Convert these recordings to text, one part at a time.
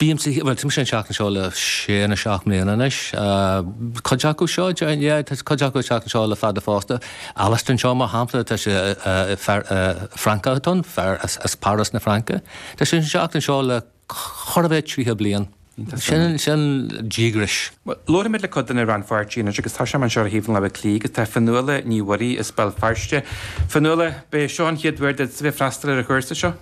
Bímse, bhuel, tá mise ag teacht anseo le sé nó seacht mbliana anois. Cuid acu seo, yeah, tá cuid acu ag teacht anseo le fada fosta. Alain anseo mar shampla, tá sé, fear Francach atá ann, fear as Páras na Fraince. Tá sé ag teacht anseo le chóir a bheith triocha bliain. Sin, sin díograis. Bhuel, labhraímid le cuid de na rannpháirtithe anois agus tá Seán anseo as Baile Átha Cliath agus tá Fionnuala Ní Mhuirí as Béal Feirste. Fionnuala, ba é seo an chéad uair duitse bheith ag freastal ar an chúrsa seo?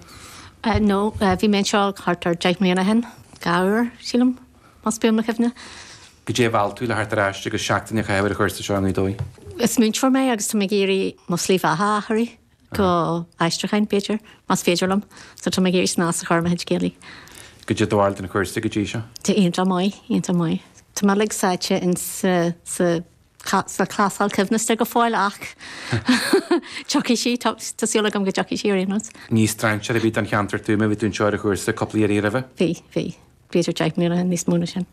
No, bhí mé anseo thart ar deich mbliana ó shin, dhá uair, sílim, más buan mo chuimhne. Goidé a mheall tú le theacht ar ais agus seachtain a chaitheamh ar an chúrsa seo i nGaoth Dobhair? Is múinteoir mé agus tá mé ag iarraidh mo shlí bheatha a athrú go aistriúcháin, b'fhéidir, más féidir liom, so tá mé ag iarraidh snas a chur ar mo chuid Gaeilge. Goidé do bharúil den chúrsa go dtí seo? Tá sé iontach maith, iontach maith. Tá mé uilig sáite insa. cha, sa chlásal choibhneasta go fóill ach tiocfaidh sí, tá, tá súil agam go dtiocfaidh sí ar aon nós. Ní strainséir ar bith don cheantar tú, mar bhí tú anseo ar chúrsa cúpla iarraidh roimhe? Bhí, bhí. B'fhéidir deich mbliana, níos mó ná sin.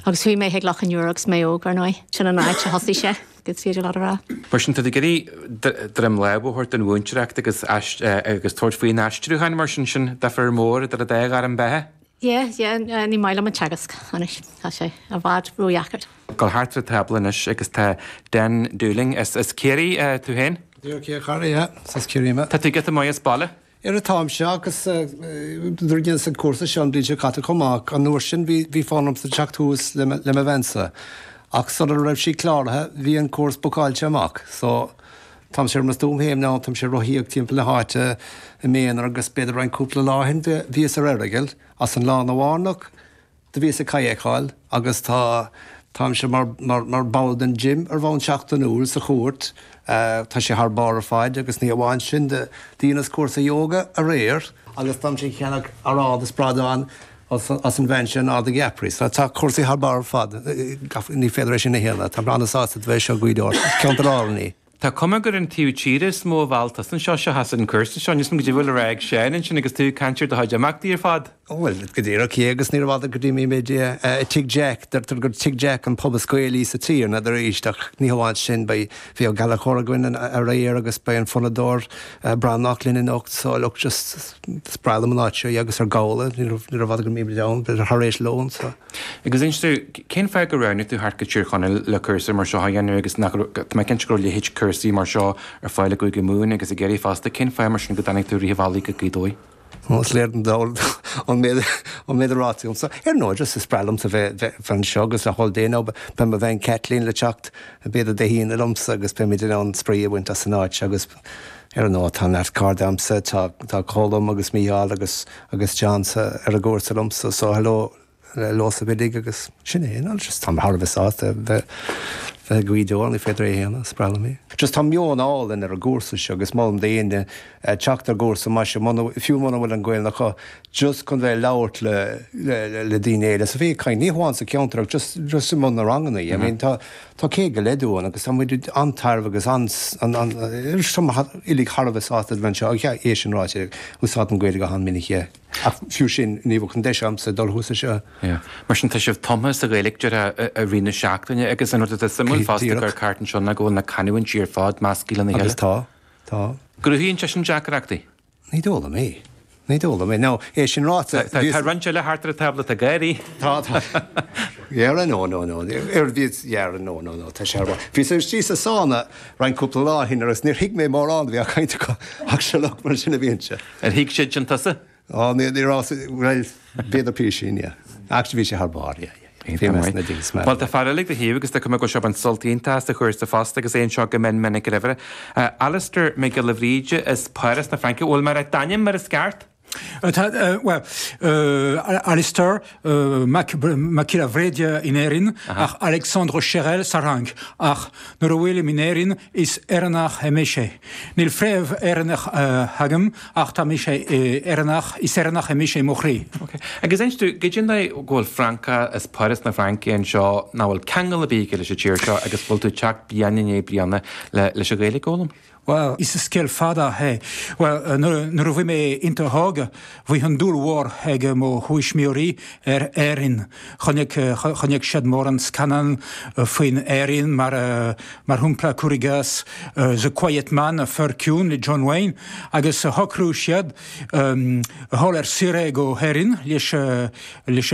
Agus chuaigh mé chuig Loch an Iúir agus mé óg, ar ndóigh. Sin an áit a thosaigh sé, is féidir leat a rá. Mar sin, tá tú ag iarraidh droim láimhe a thabhairt don mhúinteoireacht agus, agus tabhairt faoin aistriúchán mar sin, sin deifir mór idir an dá ghairm bheatha? Yeah, yeah, ní maith liomsa an teagasc anois, tá sé i bhfad ródheacair. Dul thart an tábla anois agus tá Dan Dowling, as Ciarraí tú féin? Yeah, okay, Ciarraí, yeah, as Ciarraí mé. Tá tú giota maith as baile. Ara táimse agus dheineas-sa an cúrsa seo an bhliain seo caite chomh maith ach an uair sin bhí fonn ormsa teacht suas le mo bhean-sa ach sula raibh sí cláraithe bhí an cúrsa bookáilte amach so Táimse ar mo shuaimhneas, táimse ag rothaíocht timpeall na háite i m'aonar agus b'fhéidir roinnt cúpla lá ó shin bhíos ar Earagail as an lána bearnach, do bhíos ag kayakáil agus tá, táimse mar, mar, mar ball den gym ar bhonn seachtainiúil sa chúirt, tá sé thar barr ar fad agus ní hamháin sin, do dheineas cúrsa yoga aréir agus táimse ag ceannach aráin is bradán as an bhean sin, Árdaigh Eaphorai. Sea, tá cúrsaí thar barr ar fad, ní féidir é sin a shéanadh. Táim breá sásta a bheith anseo i Gaoth Dobhair, ceantar álainn í. Tá cuma gur an taobh tíre is mó a mheall tú anseo seachas an cúrsa seo. Níos mó, goidé a bhfuil a rá ag Seán ansin agus tú ag caint ar do chuid imeachtaí ar fad. Bhuel, go díreach, cé, agus níorbh fhada go dtí bhí muid i Tigh Jack, deirtear gur Tigh Jack an pub is Gaelaí sa tír, an fhad arís, ach ní hamháin sin, bhí Ó Gallachóir againn aréir agus beidh an fonnadóir Breathnach linn anocht, so look, just. Is breá liom an áit seo, agus ar ndóigh, níorbh fhada go mbeimid ann, b'fhéidir thar éis lóin sa. Agus anois tú, cén fáth gur roghnaigh tú theacht go Tír Chonaill le cúrsa mar seo a dhéanamh agus nach raibh, tá mé cinnte go raibh leithéid cúrsaí mar seo ar fáil i gCúige Mumhan agus i gCiarraí fosta, cén fáth mar sin go dtáinig tú an bealach go Gaoth Dobhair? Bhuel, is léir don dall ón méid, ón méid atá ráite agamsa, ar ndóigh, just is breá liomsa bheith, bheith, bheith anseo agus nach bhfuil daoine, beidh mo bhean Kathleen le teacht b'fhéidir Dé hAoine liomsa agus beimid in ann spraoi a bhaint as an áit seo agus. Ar ndóigh, tá neart cairde agamsa, tá Colm agus Mícheál agus agus John sa ar an gcúrsa liomsa, so hello daoibh uilig agus sin é, you know, just táim thar a bheith sásta bheith bheith ag Gweedore, an féidir é a shéanadh, spreagann mé. Just tá meon álainn ar an gcúrsa seo agus molaim d'aoinne teacht ar chúrsa mar seo muna fiú muna bhfuil an Ghaeilge acu, just chun bheith ag labhairt le le le daoine eile, so bheith ag caint, ní hamháin sa cheantar ach just just i mbun na ranganna, I mean tá Tá céad go leith dínn agus tá muid an-tairbheach agus an-stuama uilig thar a bheith sásta a bheith anseo. Ach é sin ráite, úsáidim Gaeilge go han-mhinic. Ach fiú sin, ní bheadh an deis agamsa dul ar chúrsa seo. Mar sin, tá sibh tumtha sa Ghaeilge i rith na seachtaine. Agus an rud atá suimiúil fosta faoin gcúrsa anseo ná go bhfuil na canúintí ar fad meascaithe lena chéile. Agus tá, tá. Cruthaíonn sé sin deacrachtaí? Ní d'fhoghlaim é. Ní d'fhoghlaim é. Ná é sin ráite, bhí. Tá roinnt eile thart ar an tábla, tá gáirí. Tá, tá. Dhera, no, no, no. Ar bhíos dhera, no, no, no, tá sé ar bharr. Bhíos istigh sa sána roinnt cúpla lá ó shin agus níor thuig mé mórán a bhí á caint acu ach seo lucht mar sin a bhíonn sé. Ar thuig siad sin tusa? Ó, ní, ní raibh, bhuel. Bhíodar piarsíní air. Actually bhí sé thar barr, yeah, yeah, yeah. Bhí mé as na digs marbh. Bhuel, tá fear eile ag do thaobh agus tuigim go bhfuair sé sult iontach as an chúrsa fosta agus é anseo go mion minic roimhe. Alastair Mac Giolla Bhríde as Páras na Fraince. Bhuel, abair d'ainm mar is ceart. Tá, bhuel, Alastair Mac Giolla Bhríde in Éirinn ach Alexandre Chérel sa Fhrainc ach nuair a bhfuilim in Éirinn is Éireannach mé sé. Níl fréamh Éireannach agam. Ach tá mise Éireannach, is Éireannach é mise i mo chroí. Ok. Agus inis dúinn, cad tuige go bhfuil Francach as Páras na Fraince anseo, nach bhfuil ceangal ar bith aige leis an tír seo agus go bhfuil tú ag teacht bliain i ndiaidh bliana leis an Ghaeilge a fhoghlaim? Bhuel, is scéal fada é. Bhuel, nuair a bhí mé i mo thógáil, bhí an-dúil mhór ag mo thuismitheoirí ar Éirinn. Chonaic siad mórán scannán faoi Éirinn, mar shampla, cur i gcás, The Quiet Man, An Fear Ciúin, le John Wayne, agus shocraigh siad dul ar saoire go hÉirinn leis.